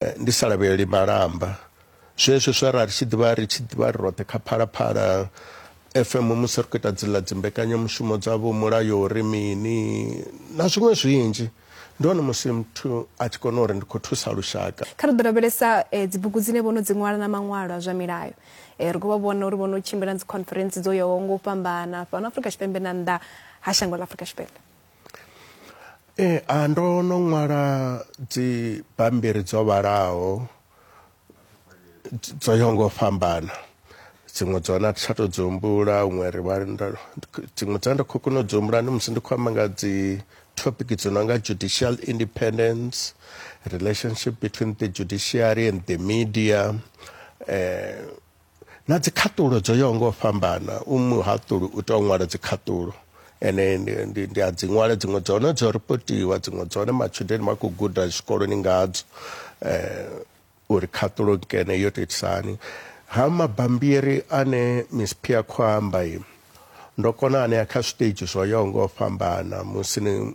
Eh, ndi sa lavheleli malamba zwezwo zwa ra ri tshi ḓivha ri tshi ḓivha ri roṱhe kha phalaphala fm musi ri khou ita dzila dzimbekanyamushumo dzavho mulayo uri mini na zwiṅwe zwinzhi ndi hone musi muthu a tshi kona uri ndi khou thusa lushaka kha ri ḓo lavhelesa eh, dzibugu dzine vho no dzi ṅwala na maṅwalo a zwa milayo eh, ri khou vha vhona uri vho no tshimbila na dzikhonferentsi dzo yaho ngo u fhambana fhano afrika tshipembe na nnḓa ha shango ḽa afrika tshipembe Ee, a ndo no ṅwala dzi bammbiri dzo vhalaho dz- dzo yaho ngo fhambana dziṅwe dza hone a thi tsha to dzi humbula huṅwe ri vha nda- dziṅwe dza ndi khou kona u dzi humbula ndi musi ndi khou amba nga dzi topic dzo no nga judicial independence relationship between the judiciary and the media eh na dzikhaṱulo dzo yaho ngo fhambana u muhaṱuli u tou ṅwala dzikhaṱulo ene ndi a dzi ṅwala dziṅwe dza hone dzo ripotiwa dziṅwe dza hone matshudeni vha khou guda zwikoloni ngadzo um uri khaṱulo nkene yo to itisani ha mabambiri ane miss pia khou amba i ndo kona anea kha zwiṱitshi zwo yaho ngo fhambana musi ni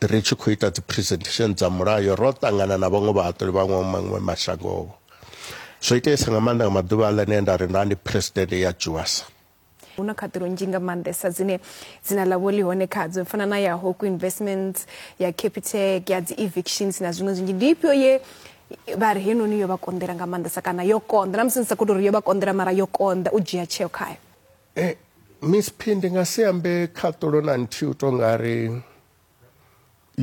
ri tshi khou ita dzi presentation dza mulayo ro ṱangana na vhaṅwe vhahaṱuli vha maṅwe mashangovho zwo iteesa nga maanḓa nga maḓuvha a ḽenee nda ri nda ndi president ya juasa hu na khaṱulo nzhi nga maanḓesa dzine dzina ḽavho ḽi hone khadzo fana na ya hoku investments ya capitec ya dzi evictions na zwiṅwe zwinzhi ndi ifhio ye vha ri henoni yo vha konḓela nga maanḓesa kana yo konḓa na musi ni sa khou tou ri yo vha konḓela mara yo konḓa u dzhia tsheo khayo E, Miss P ndi nga si ambe khaṱulo na nthihi u to nga ri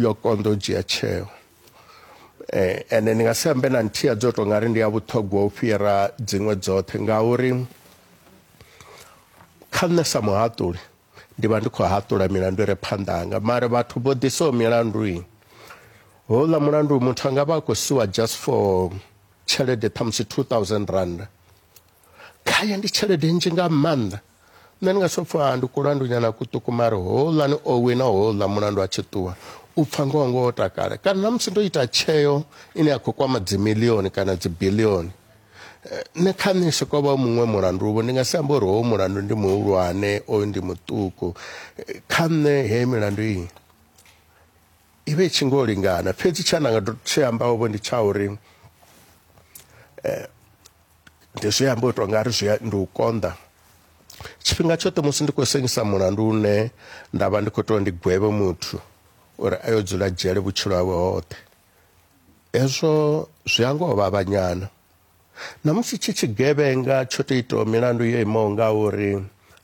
yo konḓa u dzhia tsheo eh, ende ndi nga si ambe na nthihi ya dzo to nga ri ndi ya vhuṱhogwa u fhira dziṅwe dzoṱhe ngauri kha nṋe sa muhaṱuli ndi vha ndi khou haṱula milandu i re phanḓa hanga mara vhathu vho ḓisaho milandu i houḽa mulandu muthu a nga vha a khou siwa just for tshelede ṱhamusi 2000 rand khaye ndi tshelede nzhi nga maanḓa nṋe ndi nga si pfha ndi kulandunyana kuṱuku mari houḽani o wina houḽa mulandu a tshi ṱuwa u pfha ngoho ngoho takale kana na musi ndo ita tsheo ine ya khou kwama dzimilioni kana dzibilioni eh, nṋe kha nṋe soko vha muṅwe mulandu vho ndi nga si amba uri howo mulandu ndi muhulwane oyu ndi muṱuku eh, kha nṋe heyi milandu iyi i vhe i tshi ngo lingana fhedzi tsha nda nga tshi ambaho vho ndi tsha uri eh, Ndi zwi amba u tou nga ri zwi ndi u konḓa tshifhinga tshoṱhe musi ndi khou sengisa mulandu une nda vha ndi khou tou ndi gwevhe muthu uri a yo dzula dzhele vhutshilo hawe hoṱhe hezwo zwi a ngoho vhavhanyana na musi tshi tshigevhenga tsho tou itaho milandu yo imaho nga uri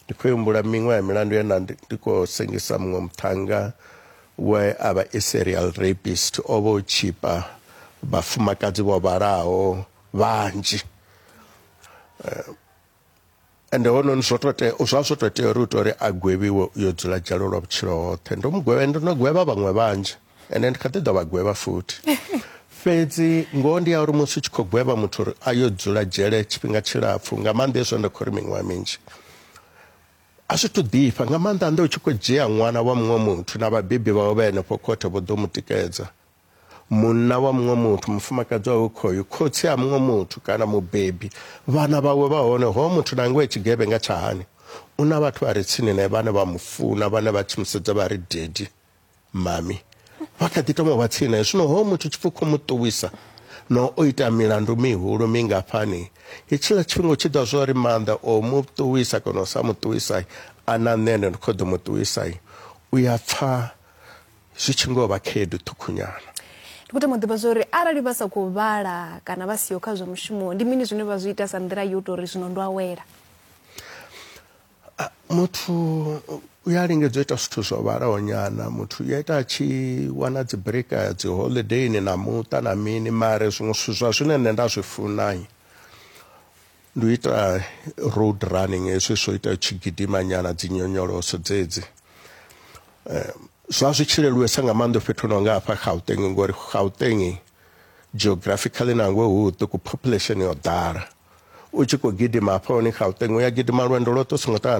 ndi khou humbula miṅwe ya milandu ye na ndi khou sengisa muṅwe muṱhanga we a vha i serial rapist o vha o tshipa vhafumakadzi vho vhalaho vhanzhi eh, ende hononi zwo to tea zwa zwo to tea uri u to uri a gwevhiwe u yo dzula dzhalo lwa vhutshilo hoṱhe ndo mu gwevha ndo no gwevha vhaṅwe vhanzhi ende ndi kha ḓi ḓo vha gwevha futhi fhedzi ngoho ndi ya uri musi u tshi khou gwevha muthu uri a yo dzula dzhele tshifhinga tshilapfhu nga maanḓa hezwo ndo khou ri miṅwaha minzhi a zwi to ḓifha nga maanḓa nnḓa u tshi khou dzhia ṅwana wa muṅwe muthu na vhabebi vhawe vha henefho khothe vho ḓo mu tikedza munna wa muṅwe muthu mufumakadzi wawe khoyu khotsi a muṅwe muthu kana mubebi vhana vhawe vha hone ho muthu na ngoe tshigevhenga tsha hani u na vhathu vha re tsini nae vhane vha mu funa vhane vha tshi mu sedza vha ri dedi mami vha kha ḓi toma vha tsini nae zwino ho muthu tshipfi khou mu ṱuwisa na o ita milandu mihulu mingafhani hetshiḽa tshifhinga u tshi ḓa zwo ri maanḓa o mu ṱuwisa kana u sa mu ṱuwisai a na nṋe ende ndi khou ḓo mu ṱuwisai u ya pfha zwi tshi ngo vha khaedu ṱhukhunyana. Ndi khou tama u ḓivha zwo ri arali vha sa khou vhala kana vha siho kha zwa mushumo ndi mini zwine vha zwi ita sa nḓila yo tou ri zwino ndo awela? Muthu u ya lingedza u ita zwithu zwo vhalaho nyana muthu u ya ita a tshi wana dzi breaka ya dzi holidayini na muṱa na mini mare zwiṅwe zwithu zwa zwine nṋe nda zwi funa Ndi u ita road running hezwi zwo ita tshi gidima nyana dzi nyonyoloso dzedzi eh, zwa zwi tshi leluwesa nga maanḓa fhethu no nga hafha Gauteng ngori Gauteng geographically nangwe hu ṱuku population yo ḓala u tshi khou gidima hafha hone Gauteng u ya gidima lwendo lwoṱhe u songo ṱangana